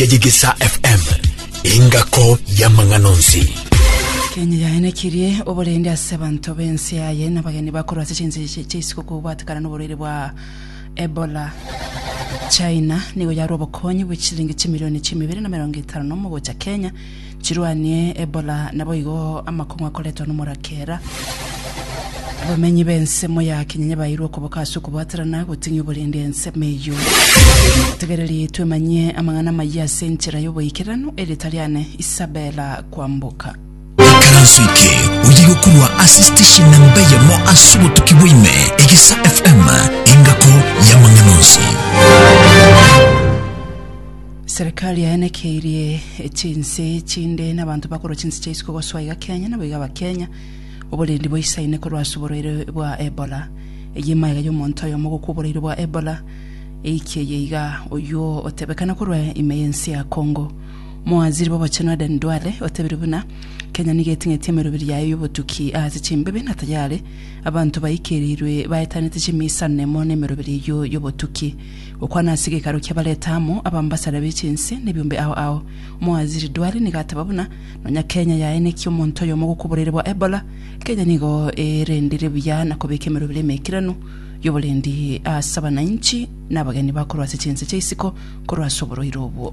ya Yegesa FM, engako y'amang'ana onsi. Kenya yaenekirie oborende ase abanto b'ense yaye n'abageni bakorwa ase chinse chi- chi'isiko kobwatekana n'oborwaire bwa Ebola. China nigo yarwa obokonyi bwe chilingi chimilioni chimibere na emerongo etano na omo gocha Kenya Chirwanie Ebola, naboigo amakong'u akoretwa nomorake era. Abamenyi b'ensemo ya Kinyanya baeirwe okoboka ase okobwaterana goting'ia oborendi ensemo eyio. Tegereri twemanyie amang'ana amayia ase enchera y'oboikeranu, erieta riane Isabella Kwamboka. Ikaranso eke oye gokorwa ase station namba eyemo ase obotuki bwaime Egesa FM engako y'amang'ana onsi. Serikali yaenekeirie chinse chinde n'abanto bakorwa chinse chia isiko goswa iga Kenya nabo iga Abakenya oborendi boisaine korwa ase oborwaire bwa Ebola. Eyio emaiga y'omonto oyomo ogokwa oborwaire bwa Ebola eike eye iga oyio otebekana korwa ime y'ense ya Congo. Omowaziri b'obochenu Aden Duale otebirie buna Kenya nigo eting'eti emeroberi yaye y'obotuki ase chimbibe na tayari abanto baikerirwe baetanete chimiisano nemo n'emeroberi eyio y'obotuki Okwana ase gekaro kia bareta amo abambasare be chinse ne biombe ao ao. Omowaziri Duale nigo ateba buna nonya Kenya yaenekia omonto oyomo gokoboreire bwa Ebola, Kenya nigo erendire buya na kobeka emerobera emekeranu yoborendi ase abanainchi na abageni bakorwa ase chinse chia isiko korwa ase oborwaire obwo.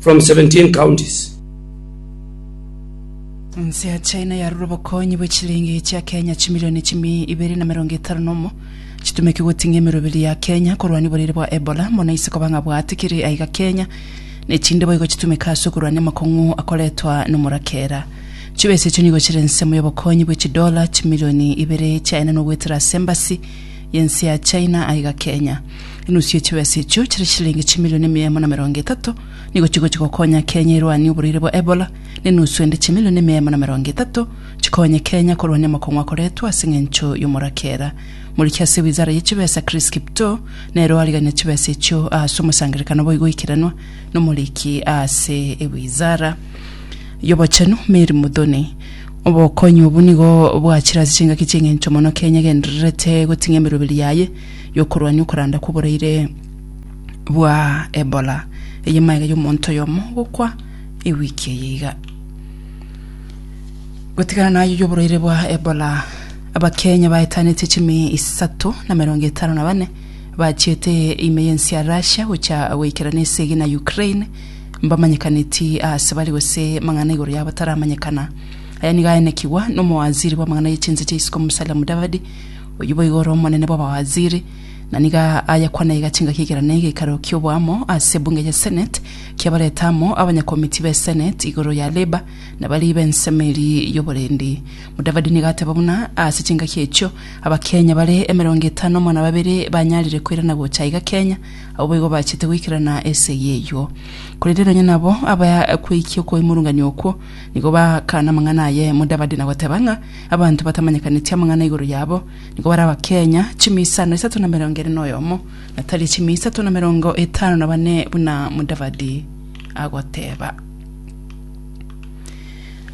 from 17 counties. Ense ya China yarure obokonyi bwe chilingi chia Kenya chimilioni chimi ibere na merongo etano na omo chitumeke goting'a emeroberi ya Kenya korwania oborwaire bwa Ebola mono ise koba ng'a bwatikire aiga Kenya ne chinde boigo chitumeke ase okorwania amakong'u akoretwa nomorakera. Chibesa echio nigo chire ensemo y'obokonyi bwe chidola chimilioni ibere chiaenenwa goetera ase embasi y'ense ya China aiga Kenya. Enusu ye chibesa echio chire chilingi chimilioni mia emo na merongo etato nigo chigochia gokonya Kenya erwanie oborwaire bwa Ebola, na enusu ende chimilioni mia emo na merongo etato chikonye Kenya korwania amokong'u akoretwe ase eng'encho y'omorakera. Moriki ase wizara ye chibesa Chris Kiptoo nere oarigania chibesa echio aase omosangerekano boigo oikiranwa nomoriki aase ewizara y'obochenu Mary Muthoni. Obokonyi obo nigo bwachire ase chingaki chi'engencho mono Kenya egendererete goting'a emeroberi yaye y'okorwania okoranda kw'oboraire bwa Ebola, eye magega y'omonto oyomo gokwa ewiki eye iga. Gotigana naye y'oboraire bwa Ebola, Abakenya baetanetie chimi isato na merongo etano na bane bachiete ime y'ense ya Russia gocha goikerana esegi na Ukraine, mbamanyekaneti aase bare gose mang'ana igoro yabo taramanyekana. Aya nigo aenekigwa nomowaziri bw'amang'ana ye chinse chia isiko Musalia Mudavadi, oyio boigo ore omonene bw'abawaziri, na nigo ayakwana iga chingaki ekero ne egeikaro ki'oboamo ase ebunge ya Senate kiabarete amo abanyakomiti be Senate igoro ya Labour na baria b'ensemo eria y'oborendi. Mudavadi nigo ateba buna ase chingaki echio, Abakenya bare emerongo etano mona babere banyarire koirana gocha iga Kenya, Abwo boigo bachete goikerana ase y'eyio. Korende nonya nabo abakweikia okoimurunganio okwo, nigo bakana amang'ana aye Mudavadi na goteba ng'a abanto batamanyekaneti amang'ana igoro yabo nigo barabakenya chimia isano isato na emerongo ere noyomo, na tari chimia isato na emerongo etano na bane buna Mudavadi agoteba.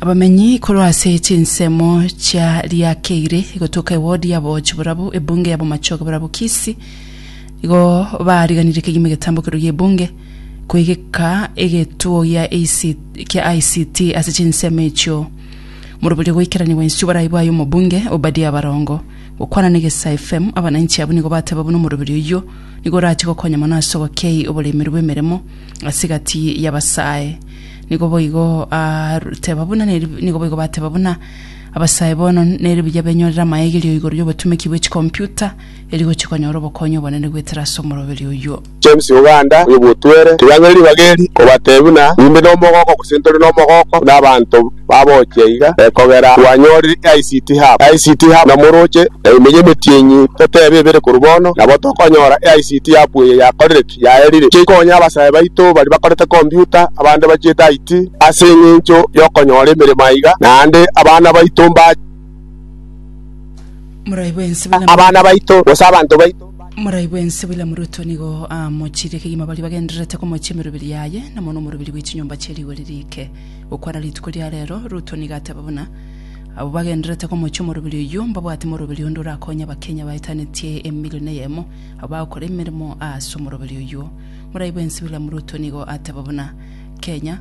Abamenyi korwa ase chinsemo chia Riakeire gotoka ewodi yabo Chiborabu, ebunge yabo Machoge Borabu Kisii, Igo baariganirie kegima egetambo keria gi'ebunge kwegeka egetuo gia IC kia ICT ase chinsemo echio. Moroberio goikerania gwensio borai bwaye omobunge Obadia Barongo. Gokwana na Egesa FM, abananchi abwo nigo bateba buna omoroberio oyio nigo orachie gokonya mono ase ogokei oboreimeri bw'emeremo ase egati y'abasae. Nigo boigo aru teba buna neri nigo boigo bateba buna abasae bono neri buya benyorere amaegerio igoro y'obotumeki bwe chikomputa erigochia konyora obokonyi obonene goetera ase omoroberi oyio. James Oganda oyo bwotwere ritang'ani ribaga eri kobatebia buna imbe nomogooko gose ntore nomogooko buna abanto babochia iga ekogera twanyorire ICT Hub. ICT Hub na moroche na emenyo emetienyi totebe ebere korwa bono nabo tokonyora ICT Hub eye yakorire ki? Yaerire ki ekonye abasae baito baria bakorete computer abande bachiete IT ase engencho yokonyora emeremo aiga naende abana baito mba Morai bwensi buna abana baito, gose abanto baito, Morai bwensi William Ruto nigo amochirie kegima baria bagendererete komochia emeroberi yaye na mono omoroberi bwe chinyomba chie rigori riike. Gokwana rituko ria reero, Ruto nigo ateba buna abwo bagendererete komochia omoroberi oyio mbabwate moroberi onde orakonye abakenya baetanetie emilion eyemo abwo bagokora emeremo aase omoroberi oyio. Morai bwensi William Ruto nigo ateba buna Kenya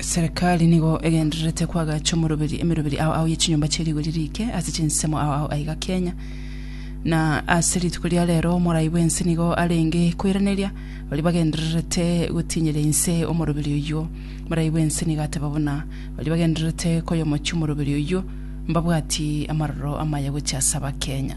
Serikali nigo egendererete koagacha omoroberi emeroberi ao ao ye chinyomba chie rigori riike ase chinsemo ao ao aiga Kenya. Na ase rituko ria rero omorai bw'ense nigo arenge koiraneria baria bagendererete gotinyera inse omoroberi oyio. Morai bw'ense nigo ateba buna baria bagendererete koyomochia omoroberi oyio mbabwati amaroro amaya gochia ase Abakenya.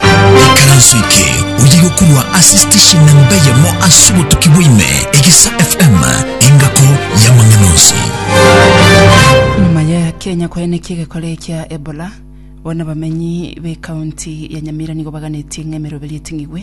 Ekeranso eke oye gokorwa ase station namba eyemo ase obotuki bwaime, Egesa FM, engako y'amang'ana onsi. Nyuma ya Kenya koenekia egekora ekia Ebola, bono abamenyi b'ekaunti ya Nyamira nigo baganetie ng'a emeroberi eting'igwe